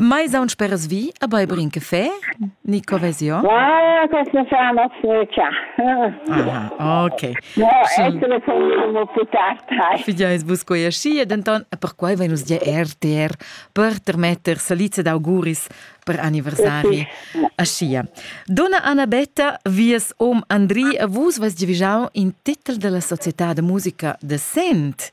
Mai saun speras vi a bai brin caffè? Ni covesion? Ah, questo fa una freccia. Ah, ok. No, essere come putata. Fidiais vus quei aschi e denton per quei vein nus dir RTR per termetter saliza d'auguris per anniversari. Aschia. Donna Annabetta, vies om Andri, vus vas divigau in titel della società de musica de Sent.